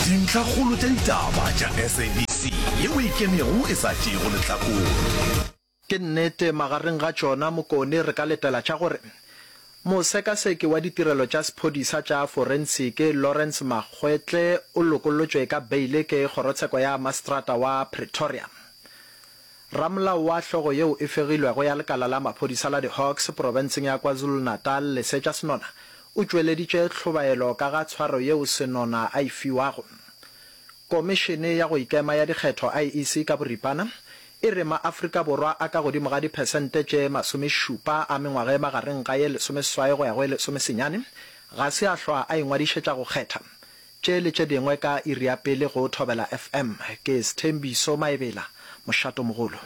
Dintlhakgolo tša ditaba tša SABC yeo e kenego e sa tšeego lehlakore. Ke nnete, magareng ga tšona Mokone re ka letela tša gore mosekaseki wa ditirelo tša sephodisa tša forensiki Lawrence Makgoetle o lokollotšwe ka beile ke kgorotsheko ya maseterata wa Pretoria. Ramolao wa hlogo yeo e fegilwego ya lekala la maphodisa la di-Hawks profenseng ya KwaZulu-Natal, Lesetša Senona, o tšweleditše tlhobaelo ka ga tshwaro yeo Senona a e fiwago. Komišene ya go Ikema ya Dikgetho, IEC, ka boripana e re ma-Afrika Borwa a ka godimo ga diphesente tše masomešupa a mengwaga e magareng ga ye lesomeseswai go ya go ye lesomesenyane ga se a hlwa a ingwadišetša go kgetha Tše le tše dingwe ka iri ya pele go Thobela FM. Ke Sthembiso Maebela, mošatomogolo.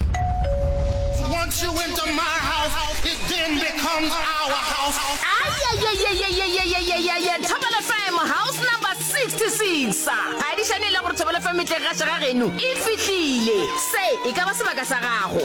Once you enter my house, it then becomes our house. Ayayayayayayayayayaya Thobela FM house number 66 Phadišano e le gore Thobela FM e tle gaša ga geno e fihlile Se e ka ba sebaka sa gago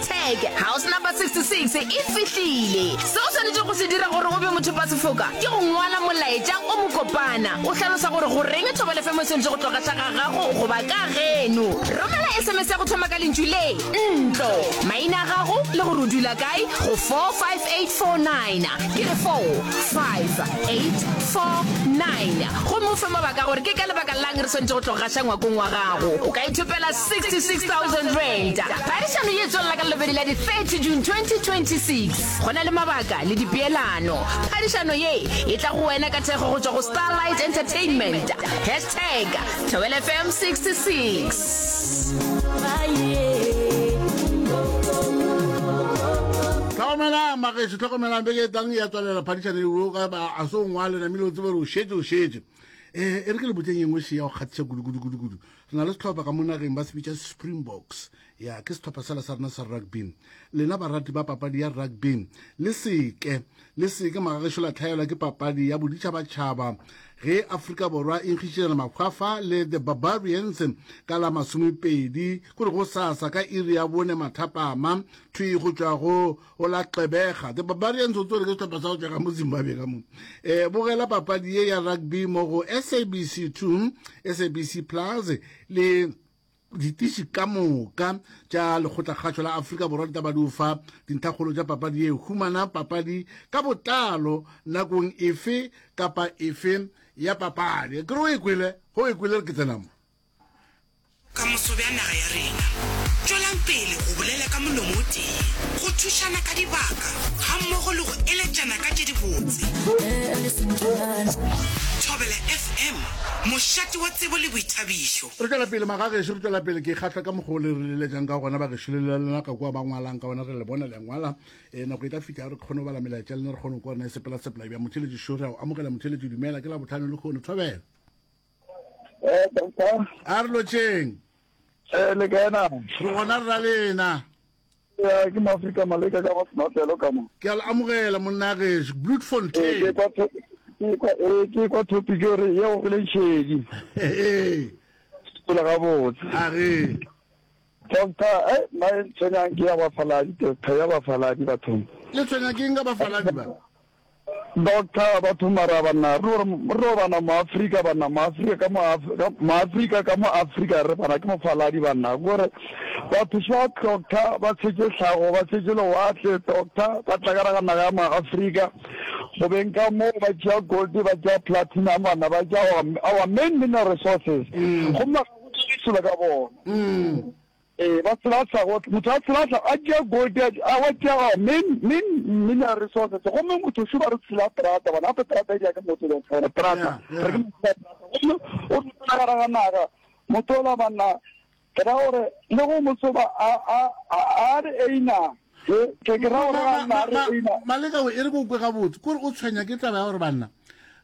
Tag, House Number 66 e fihlile. Seo o swanetšego go se dira gore o be mothopasefoka ke go ngwala molaetša o mokopana o hlalosa gore goreng thobalefemo e swanetše go tloga tla ga gago goba ka geno. Romela SMS ya go thoma ka lentšu le, ntlo, maina a gago le gore o dula kae go 45849, ke re 45849, gomme o fe mabaka a gore ke ka lebaka la'ng re swanetše go tloga gaša ngwakong wa gago. O ka ithopela R66,000. Phadišano ye e tswelela ka Labobedi la di 30 June 2026. Go na le mabaka le dipeelano. Phadišano ye e tla go wena ka thekgo go tšwa go Starlight Entertainment. Hashtag Thobela FM 66. Tlhokomelang magešo, tlhokomelang beke e tlang ya tswalela phadišane eo ka ba a se o ngwale namile o tsebe gore o šetše o šetše um e re ke le botseng engwe se ya go kgathiša kudu kudu kudu kudu Re na le sehlopha ka mo nageng ba se bitša Springboks. Ya, ke sehlopha sela sa rena sa rugby. Lena barati ba papadi ya rugby, le se ke, le se ke magagešo la hlaelwa ke papadi ya boditšhabatšhaba ge Afrika Borwa e nkgišitšana makgwafa le The Barbarians ka la masomepedi, go re gosasa ka iri ya bone mathapama, thwi go tšwa go o la xebega the barbarians o tswere ke setlhopha sa go tšega mo zimbabwe ka mo eh bogela papadi ye ya rugby mo go sabc two sabc plus le ditiši ka moka tša lekgotlakgatšo la afrika borwa di taba di o fa dinthakgolo tša papadi ye humana papadi ka botlalo nakong efe kapa efe ya papadi ke re o e kwele go e kwele re ke tsenamo Ka moso bja naga ya rena, tšwelang pele go bolela ka molomo o tee, go thušana ka dibaka gammogo le go eletšana ka tše dibotse. Thobela FM, mošate wa tsebo le boithabišo. Re tšwela pele magagešo, re tšwela pele. Ke kgahlwa ka mokgwa o le re leletšang ka gona bagešo, le la lena ka kua ba ngwalang ka gona, re le bona le a ngwala. E, nako e tla fihla re kgone go bala melaetša lena, re kgone go kwa rena e sepela sepela. Ebja motšheletši Šori a o amogela. Motšheletši dumela, ke Labohlano lehono, thobela. a re lotšeng eh le kena re gona re ra le ena ya ke maafrika maleka ka go senotelo ka mo ke a le amogela monna geso bloedfontein eh, ke kwa topic gore ye go gole nšedi pela gabotse a re doctor e eh, nna e tshwenyang ke ya bafaladi doctor ya bafaladi bathong le tshwenyang ke eng ka bafaladi ba Doctor Bathomara banna re re bana mo Africa banna mo Africa ka mo mo Africa ka mo Africa re bana ke mofaladi banna gore batho swa doctor ba tshetše tlhago ba tshetše lewatle doctor ba tla ka naga ya mo Africa go beng ka mo ba tšea gold ba tšea platinum bana ba tšea our main mineral resources go mma go tšwa ka bona Ee, ba tshelathla gohle. Motho a tshelathla a tšea gold ya a wa tšea a min, min, mineral resources. Gomme motho šuba re tshela trata, bona gape trata e dira ke motho le gore trata. Re ke motho trata. Gomme o tshela gara ga naga. Motho ola banna ke ra gore le go mo soba a a a a re einang. Maleka o e re bokwe gabotse kore o tshwenya ke taba ya gore banna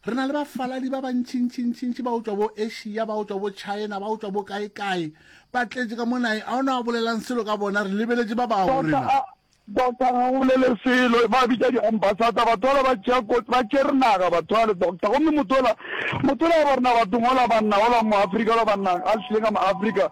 re na le bafaladi ba bantšhintšhintšhintšhi ba o tswa bo asia ba o tswa bo china ba o tswa bo kae kae ba tletse ka mo nae a o ne a bolelang selo ka bona re lebeletse ba bao rena doctor ga go bolele selo ba bitša di-ambassador batho ola ba tšere naga batho ale doctor gomme motho ola motho ola ba rena batho ngola banna ola mo afrika ola banna a hlile ka mo afrika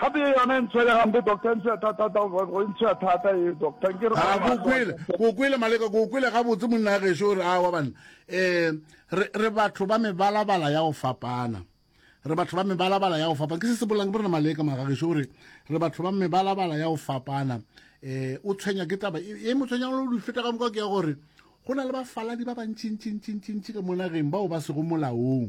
Gape ye yona e ntshwere gampe doctor, e ntshwere thata thata, go e ntshwere thata ye doctor. Nke re A go kwele, go kwele Maleka, go kwele gabotse monna ya gešo gore a wa banna. Eh, re, re batho ba mebalabala ya go fapana. Re batho ba mebalabala ya go fapana. Ke se se bolang ke borena Maleka mara gešo gore re batho ba mebalabala ya go fapana. Eh, o tshwenya ke taba, e, e mo tshwenya le di feta ka moka ke ya gore go na le bafaladi ba bantši ntši ntši ntši ntši ka mo nageng bao ba sego molaong.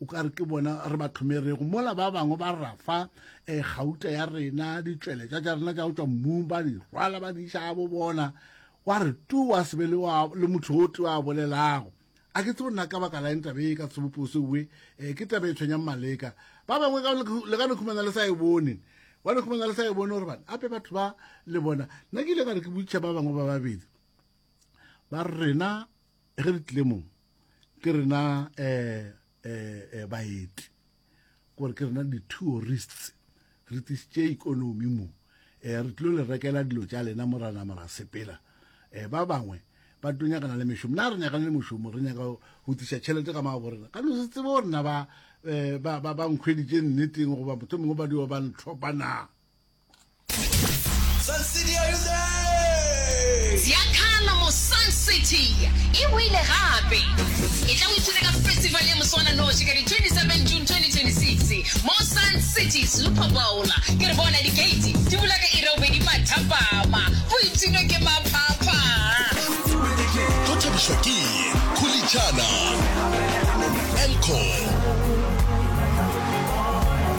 o ka re ke bona re ba tlhomerego mola ba bangwe ba rafa um eh, gauta ya rena ditšweletša tša rena tša go tšwa mmung ba di rwala ba di iša bo bona wa re tu wa sebe le motho o te wa bolelago a ke tsebo nna ka baka la eng tabe e ka tshebopose oe um eh, ke tabe e tshwenyang maleka ba bangwe le ka nekhumana le sa e bone wa nekhumana le sa e bone gore bane ape batho ba le bona nna ke ile ka re ke botšha ba bangwe ba babedi ba rena ge re tlile mong ke rena um um baeti kore ke rena di-tourists re tlisitše ikonomi mo um re tlilo le rekela dilo tša lena mo rana mora sepela um ba bangwe ba tlo nyakana le mešomo na re nyakane le mošomo re nyaka go tlisa tšhelete ka maabo rena ka no se tsebe gore na ba um ba nkgweditše nneteng goba motlho mongwe ba dio ba ntlhopa na Sun City, are you there? Ziakhala mo Sun City e wile gape. E tla o ithuta ka festival ya moswananoši ka di 27 June 2026 mo Sun City Super Bowl. Ke re bona di gate di bula ka iri ya bobedi mathapama. Go ipshinwe ke maphapha. Go thabišwa ke Khulitšana, Elcor,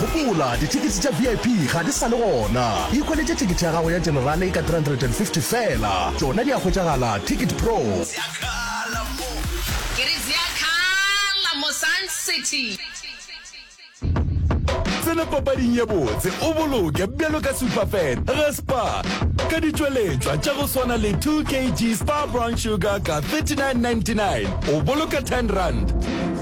Gopola, dithekete tša VIP ga di sa le gona. Ikhweletše thekete ya gago ya Generale ka R350 feela. Tšona di a hwetšagala Ticket Pro. Tsena papading ye botse o boloke bjalo ka Superfan ga Spar ka ditšweletšwa tša go swana le 2 kg Spar Brown Sugar ka R39.99 o boloka R10.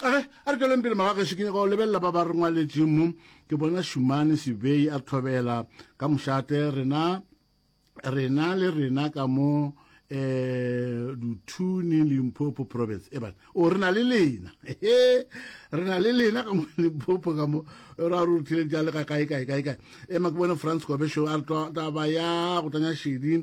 A re, a re tšweleng pele magageso, ke nyaka go lebelela ba ba re ngwaletšeng mo. Ke bona Šumane Sibei a tlhobela ka mošate, rena, rena le rena ka mo um Duthuni, Limpopo Province. Eban, o re na le lena, he, re na le lena ka mo Limpopo ka mo, ra re ruthileng tša le ga kae, kae, kae, kae. Ema ke bone Franz Kobesho a re taba ya go tanya šedi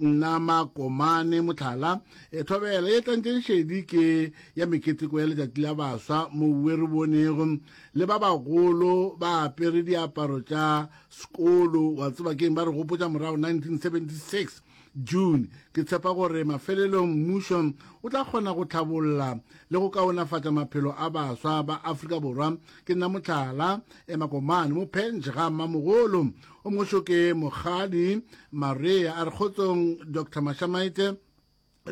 Nna Makomane Mohlala, Thobela ye tlantšeng šedi ke ya meketeko ya letšatši la baswa moue re bonego le ba bagolo ba apere diaparo tša sekolo wa tseba keng ba re gopotša morago 1976 June ke tshepa gore mafelelong mmušo o tla kgona go tlhabolla le go kaonafatša maphelo a baswa ba Afrika Borwa ke nna Mohlala, Makomane mo Penge ga Mmamogolo. O moso ke Mokgadi Marea a re kgotsong Doctor Mashamaite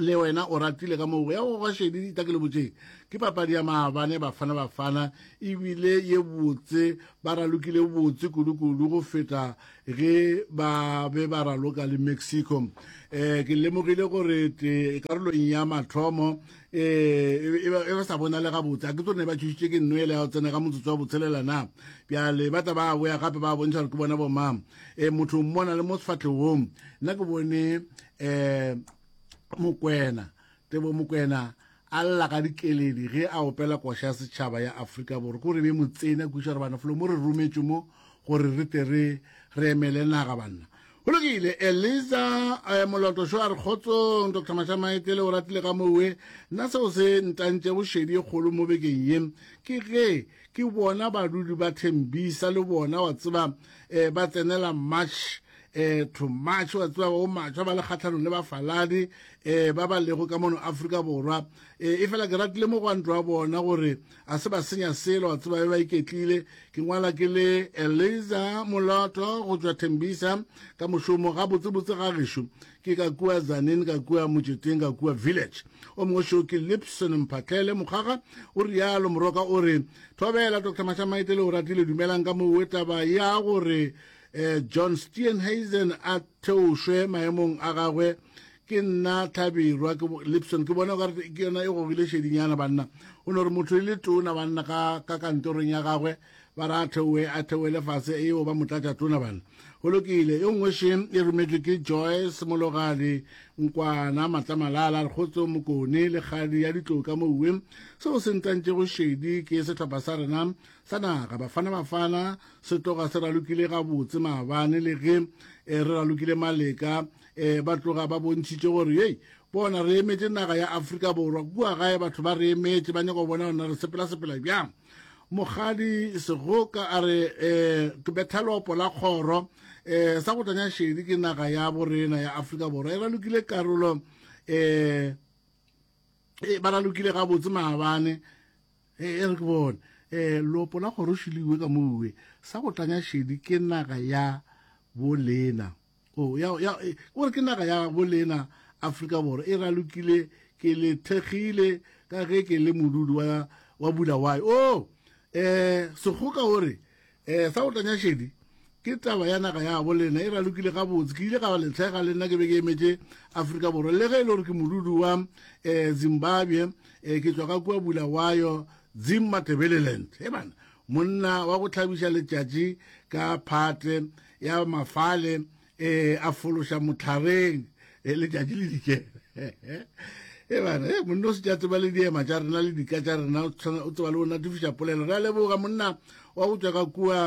le wena o ratile ka moo ya go gwa šedi dita ke le botšeng ke papadi ya maabane bafana bafana ebile ye botse ba ralokile botse kudu-kudu go feta ge ba be ba raloka le mexico um ke lemogile gore te karolong ya mathomo ee e ba sa bonale gabotse a ke tsone ba thušitše ke nno ele ya go tsena ka motsotso wa botshelela na bjale ba tla ba boya gape ba bontšha gore ke bona bomang um motho mmona le mo sefatlhegong nna ke bone um mokwena tebo mokwena a lla ka dikeledi ge a opela koša ya setšhaba ya aforika borwa ko re be mo tsena kuša gore bana folo mo re rometšwe mo gore re te re emele naga banna Go lokile, Eliza, eh, moloto šo a re kgotsong, Doctor Mashamaetele o ratile ka mowe. Nna seo se ntantšego šedi e kgolo mo bekeng ye, ke ge ke bona badudi ba Thembisa le bona, wa tseba, eh, ba tsenela March, eh, to March, wa tseba, o matšwa ba le kgatlhanong le bafaladi, eh, ba ba lego ka mono Afrika Borwa. Eh, e fela ke ratile mogwanto wa bona gore A se ba senya selo, a tseba be ba iketlile. Ke ngwala ke le Eliza Moloto go tšwa Tembisa ka mošomo, gabotsebotse ga gešo ke ka kua Zanin, ka kua Motšeteng, ka kua Village. O mongwe šo ke Lipson Mphatlele Mokgaga, o rialo Moroka o re, Thobela Doctor Mashamaite le Oratile dumelang ka mo we taba ya gore eh, John Steenhuisen a theošwe maemong a gagwe Ke nna Tlhabirwa, ke Lipson. Ke bona o ka re ke yona e gogile šedinyana, banna. O no re motho e le tona, banna, ka, ka kantorong ya gagwe, ba re a theoe, a theoele fase, eo ba motlatša tona, banna. Go lokile. E nngwe še e rometšwe ke Joyce Mologadi Nkwana Matlamalala, re kgotso Mokone, le kgadi ya ditloka moue. Seo se ntantšego šedi ke sehlopha sa rena sa naga, Bafana Bafana, se tloga se ralokile gabotse maabane, le ge e re ralokile maleka, e ba tloga ba bontšhitše gore yei bona re emetše naga ya afrika borwa kua gae batho ba re emetše ba nyaka go bona gona re sepela sepela bjang mogadi segoka a re um ke betha lopo la kgoro um sa go tanya šedi ke naga ya borena ya aforika borwa e ralokile karolo um e ba ralokile gabotse maabane e re ke bone um lopo la kgoro šiliwe ka moue sa go tanya šedi ke naga ya bolena o ya ya e, o re ke naga ya bolena Afrika Borwa e ralokile ke le thekgile ka ge ke le modudi wa wa Bulawayo o oh, eh segoka o re eh sa otanya shedi ke taba ya naga ya bolena e ralokile ga botse ke ile ga le thega le nna ke be ke emetse Afrika Borwa le ge e le gore ke modudi wa eh Zimbabwe eh ke tswa ka kwa Bulawayo Zimmatebeleland he bana monna wa go tlhabiša letšatši ka phate ya mafale e a fološa motlhareng e letšatši le dikele e bana e monna o se tša tseba le diema tša rena le dika tša rena o tseba le o natifiša polelo re a leboga monna wa go tšwa ka kua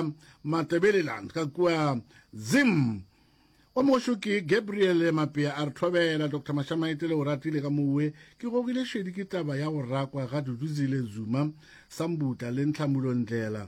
matebeleland ka kua zim o mošo ke gabriel mapea a re thobela dr mashamaete le o ratile ka mowe ke gogile šedi ke taba ya go rakwa ga duduzile zuma sambutla le ntlhamulondlela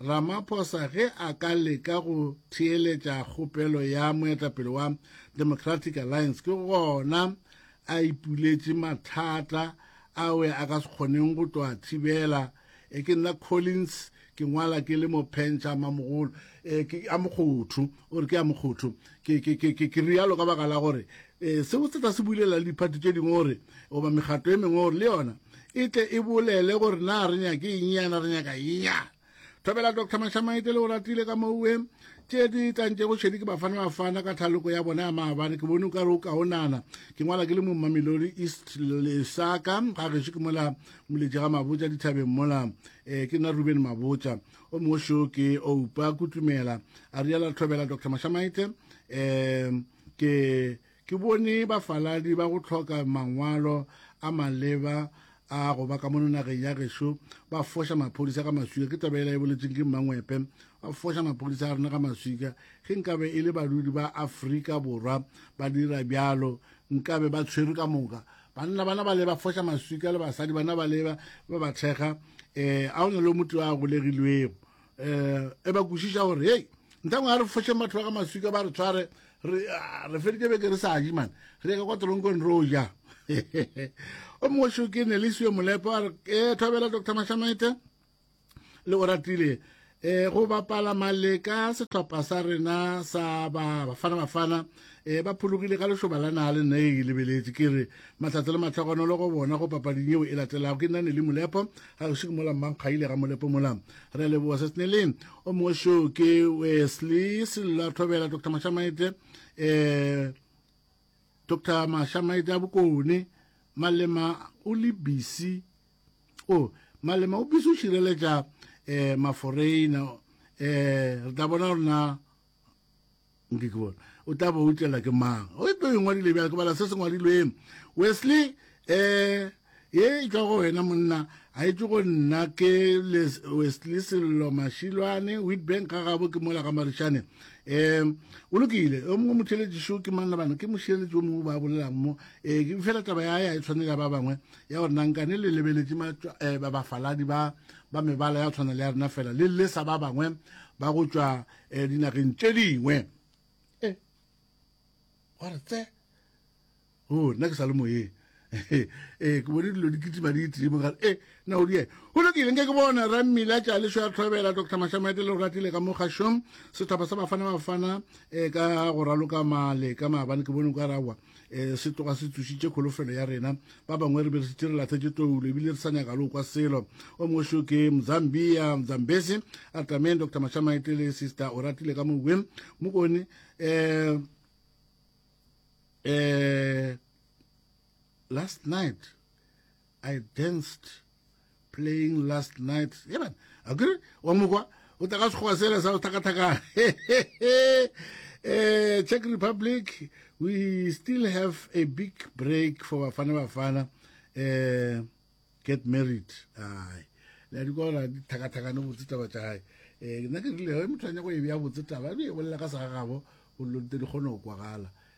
Ramaphosa ge a ka leka go theeletša kgopelo ya moetapele wa Democratic Alliance ke gona a ipuletše mathata awe a ka se kgoneng go tlo a thibela. E ke nna Collins ke ngwala ke le mo phentšha mamogolo e, ke a mokgotho o re ke a mokgotho ke, ke, ke, ke, ke rialo ka baka la gore E, seo se tla se bulela le diphathi tše dingwe gore goba megato e mengwe gore le yona e tle e bolele gore na re nyake eng yana re nyaka eng yana thobela dr mashamaite le o ratile ka moue tše di tlantše go šedi ke bafana bafana ka thaloko ya bona ya maabane ke bone o ka re o kaonana ke ngwala ke le mommamelodi east lesaka ga gešo ke mola moletše ga mabotsa dithabeng mola um ke nna ruben mabotsa o mongwe šoo ke oupa kutumela a riala thobela dr mashamaite um Ke, ke bone bafaladi ba go hloka mangwalo a maleba a go ba ka mono nageng ya gešo ba foša maphodisa ka maswika. Ke taba e la e boletseng ke Mmangwepe, ba foša maphodisa a rena ka maswika. Ge nkabe e le badudi ba Afrika Borwa ba dira bjalo, nkabe ba tshwerwe ka moka. Banna bana ba le ba foša maswika le basadi bana ba le ba ba thekga, um a o na le o motee a golegilwego um e ba kwešiša gore hei ntangwe a re foše matho a ga maswika ba re tshware re ah, feditše beke re sa je mane re ka kwa toronkong re o ja o mongwe šo ke nelisio molepo a re e thobela doctor mashamete le o ratile um go bapala maleka sehlopha sa rena sa bafana bafana e ba phologile ka lešoba la naa le nna e lebeletše ke re mahlatse le matlhogonolo go bona go papading yeo e latelago ke nna ne le molepo ga gešo ke mola mmankgaile ga molepo mola re leboa se seneleng o mongwe show ke wesley sello thobela dr mashamaite um eh, dr mashamaite a bokone malema o le bisi o oh, malema o bisi o šireletša um eh, maforeina um eh, re tla bona rona nke ke bona o tla ba utlwela ke mang o tlo e ngwadile bjale ke bala se se ngwadilweng wesley um ye e tšwa go wena monna a e tšwe go nna ke wesley sello mashilwane witbank ga gabo ke mola ga marišane um o lokile o mongwe motheletši šo ke manna bana ke mošireletši o mongwe ba bolelang mo um fela taba ya ya e tshwane ya ba bangwe ya gore nankane le lebeletše eh, bafaladi ba ba mebala ya tshwana le ya rena fela le lesa ba bangwe ba go tšwa um dinageng tše dingwe e wa re tse o oh, nna ke sa le moyeng ee ke bone dilo di kitima di itlimo gare e na o die go lokile nke ke bona ra mmila tša leso ya tlhobela dr mashamoete le go ratile ka mo gašong setlhopha sa bafana bafana um ka go raloka male ka maabane ke bone o ka rawa e se tloga se tsošitše kholofelo ya rena ba bangwe re be re setse re latlhetse toulo ebile re sa nyaka le kwa selo o mongwe seo ke mzambia mzambese a tlameng dr mashamaete le sister o ratile ka moweng mokone um um last night i danced playing last night yeban akere wa mokwa o tla ka sekgoba sela sa go thakathakana eh czech republic we still have a big break for bafana bafana eh get married ai le di kona di thakathakane botse taba tša gae um nna ke rile ge motho a nyako e bea botse taba e bolela ka sa gagabo o lonte di kgone go kwagala